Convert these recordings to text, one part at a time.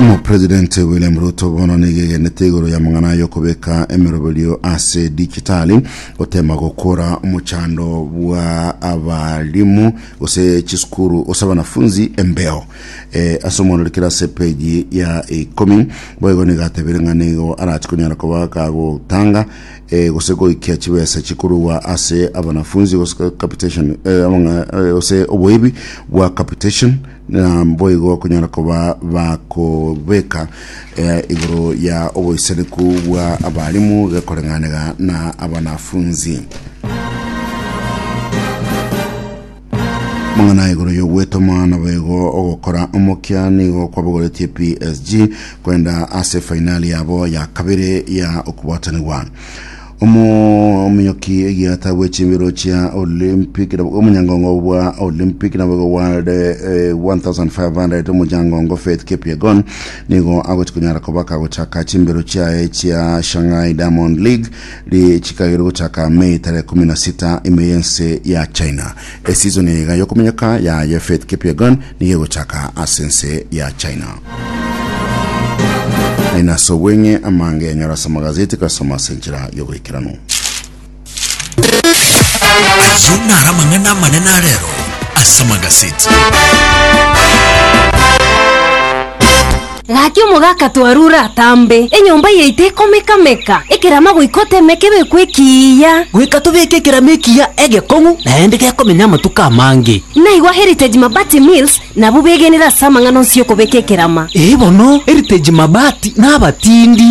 Omopresidenti William Ruto bono nigo egenete igoro y'amang'ana y'okobeka emeroberio ase digitali gotema gokora omochando bwa abarimu gose chisukuru gose abanafunzi embeo Eh, ase omwororikere ase peji ya ikomi boigo nigo atebire ng'a nigo arachikonyara koba kagotanga eh, gose goikia chibesa chikorwa ase abanafunzi gose capitation eh, eh, gose oboibi bwa capitation na boigo konyara koba bakobeka eh, igoro ya oboisaneku bwa abarimu gekoreng'anega na abanafunzi Mang'ana igoro y'ogweta omwana boigo ogokora omokia nigo kwabogoretie PSG kwenda ase fainali yabo ya kabere ya okobwatanigwa omominyoki egiata bw'echimbero chia Olympic omonyangongo bwa Olympic na boigo World eh, 1500 omonyangongo Faith Kipyegon nigo agochi konyara koba kagochaka chimbero chiaye chia Shanghai Diamond League Richika ere gochaka Mei tarehe kumi na sita ime y'ense ya China. Esizon eye y'okominyoka yaye Faith Kipyegon nigo egochaka ase ense ya China. Naende ase obweng'e amange enyora ase amagazeti gasoma ase enchera y'ogoikeranu. Ayio naro amang'ana amanene arero ase amagazeti. Gaki omogaka twarure atambe, enyomba yaito ekomeka-meka, ekerama goika oteme kebekwe ekiiya. Goika tobeke ekerama ekiiya egekong'u, naende gekomenya amatuko amange. Naigwa Heritage Mabati Mills nabwo begenire ase amang'ana onsi y'okobeka ekerama. Ee bono, Heritage Mabati nabatindi.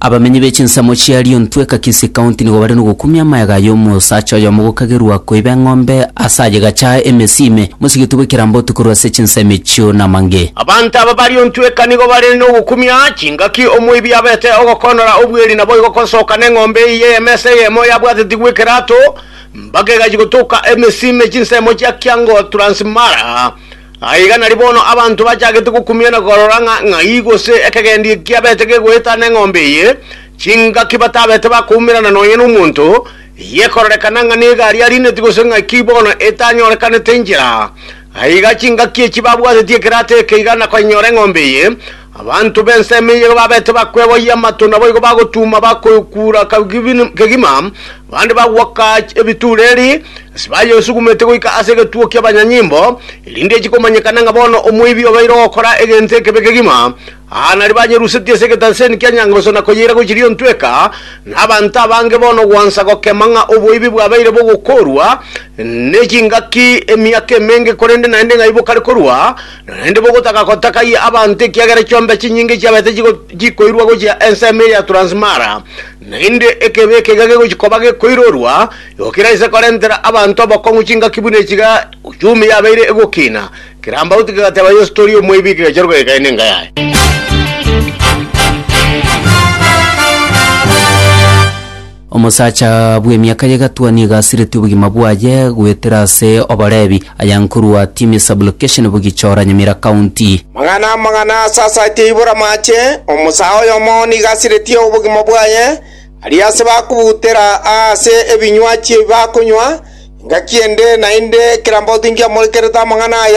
Abamenyi be chinsemo chia Lyontwe, Kakisi County nigo bare nogokumia amayaga aya omosacha oyomo gokagerwa koiba eng'ombe ase aye gachaa emesime, mosigiti bw'ekerambotu korwa ase chinsemo echio namange. Abanto aba ba Lyontwe eka nigo bare nogokumia chingaki omoibi abete ogokoonora obweri naboigo gosoka neng'ombe eye y'emesa eyemo yabwatetigwe ekerato mpaka egachia gotoka emesime chinsemo chia Kiango Transmara Na iga nari bono abanto bachagete gokumia na korora ng'a ng'ai gose ekegendi eki abete gegoeta neng'ombe eye, chingaki batabete bakoumerana nonya nomonto, eye ekororekana ng'a negari ariineti gose ng'aki bono etanyorekanete inchera. Aiga chingaki echi babwatetie ekerato eke iga nakonyenyora eng'ombe eye, Abanto b'ensemo eyio gababete bakweboyia amato, naboigo bagotuuma bakokuura kegima, abande bagwoka ebituureri, ase bayesugumetie goika ase egetuo ki'abanyanyimbo, erinde echie komanyekana ng'a bono omoibi obeire ogokora egento ekebe kegima. Aa nario banyerusetie ase egetaseni kia Nyangaso na koyeira gochiria ontweka, na abanto abange bono gwansa gokema ng'a oboibi bwabeire bogokoorwa ne chingaki emiaka emenge korende naende ng'ai bokare korwa, Naende bogotaka gotakaia abanto ekiagera chiombe chinyinge chiabaete chikoirwa gochia ensemo eria Transmara, naende ekebe ekega gegochia koba gekoirorwa, igo keraise korentera abanto abokong'u chingaki buna echi iga uchumi yabeire egokina. Kerambauti kegateba Yeso tori omoibi kegachorwa kegekaina enka yaye. Omosacha bw'emiaka y'egatwa nigo asiretie obogima bwaye goetera ase Oborebi, aya nkorwa Timi Sub-Location Bogichora, Nyamira County. Magana amagana asasaetie ibora amache, omosaa oyomo nigo asiretie obogima bwaye, aria ase bakobutera aase ebinywachi ebi bakonywa, engaki ende naende ekerambotu nkiamorekerete amang'ana aya,